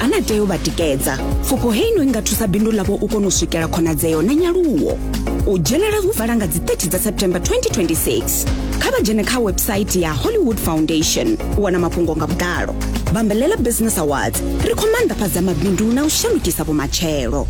a na tea u vha tikedza pfufho heino i nga thusa bindu ḽavho u kona u swikela khonadzeo na nyaluwo u dzhenela hu vala nga dzi 30 dza september 2026 kha vha dzhene kha website ya hollywood foundation u wana mafhungo nga vhuḓalo bambelela business awards ri khou maanḓafhadza mabindu na u shandukisa vhumatshelo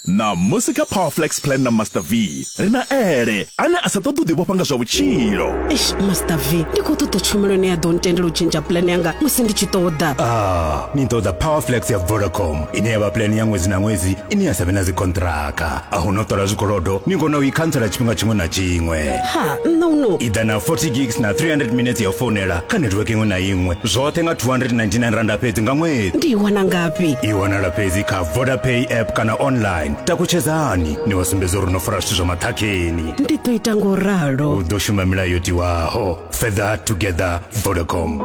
Ṋamusi kha Power Flex Plan na Master V, ri na Ele, ane a sa ṱoḓi u ḓivhofha nga zwa vhutshilo. Eish, Master V, ndi khou ṱoḓa tshumelo ine ya ḓo ntendela u tshentsha puḽane yanga musi ndi tshi ṱoḓa. Ah, ni ṱoḓa Power Flex ya Vodacom, ine ya vha puḽane ya ṅwedzi na ṅwedzi ine ya sa vhe na dzikhonṱhiraka. A hu na u ṱola zwikolodo, ni kona u i khantsela tshifhinga tshiṅwe na tshiṅwe. Ha, nṋe u no. I ḓa na 40 gigs na 300 minetse ya u founela kha netiweke iṅwe na iṅwe, zwoṱhe nga 299 randa fhedzi nga ṅwedzi. Ndi i wana ngafhi? I wanala fhedzi kha vodapay app kana online takutshedzani ni wa sumbedza uri no fara zwithu zwa maṱhakheni ndi ḓo ita ngo ralo u ḓo shuma milayo yo tiwaho further together vodacom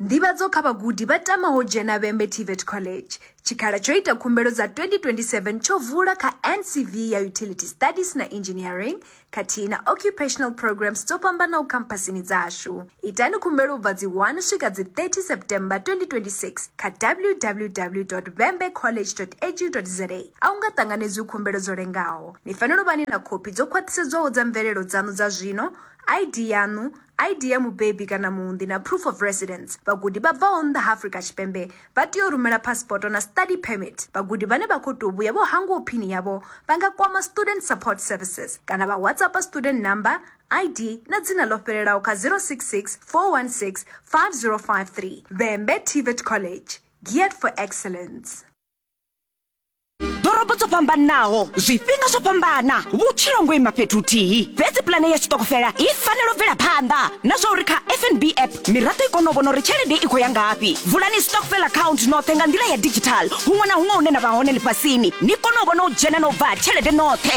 nḓivhadzo kha vhagudi vha tamaho dzhena vhembe tvet college tshikhala tsho ita khumbelo dza 2027 tsho vula kha ncv ya utility studies na engineering khathihi na occupational programs dzo fhambanaho khamphasini dzashu. Itani khumbelo u bva dzi 1 swika dzi 30 September 2026 kha www.vhembecollege.edu.za. A hu nga ṱanganedzwi khumbelo dzo lengaho. Ni fanela u vha ni na khophi dzo khwaṱhisedzwaho dza mvelelo dzaṋu dza zwino, ID yaṋu, ID ya mubebi kana muunḓi na proof of residence. Vhagudi vha bvaho nnḓa ha Afrika Tshipembe vha tea u rumela phasipoto na study permit. Vhagudi vhane vha khou tou vhuya vho hangwaho phini yavho vha nga kwama Student Support Services kana vha WhatsAppa student number, ID na dzina ḽo fhelelaho kha 066 416 5053. Vhembe TVET College, geared for excellence. ḓorobo dzo fhambanaho zwifhinga zwo fhambana vhutshilo ngo ima fhethu huthihi fhedzi pulane ya tshiṱokofela i fanela u bvela phanḓa na zwa uri kha fnb app miraḓo i kone u vhona uri tshelede i khou ya ngafhi vulani stockfel account noṱhe nga nḓila ya digital huṅwe na huṅwe hune na vha hone ḽifhasini ni kone u vhona u dzhena na u bva ha tshelede noṱhe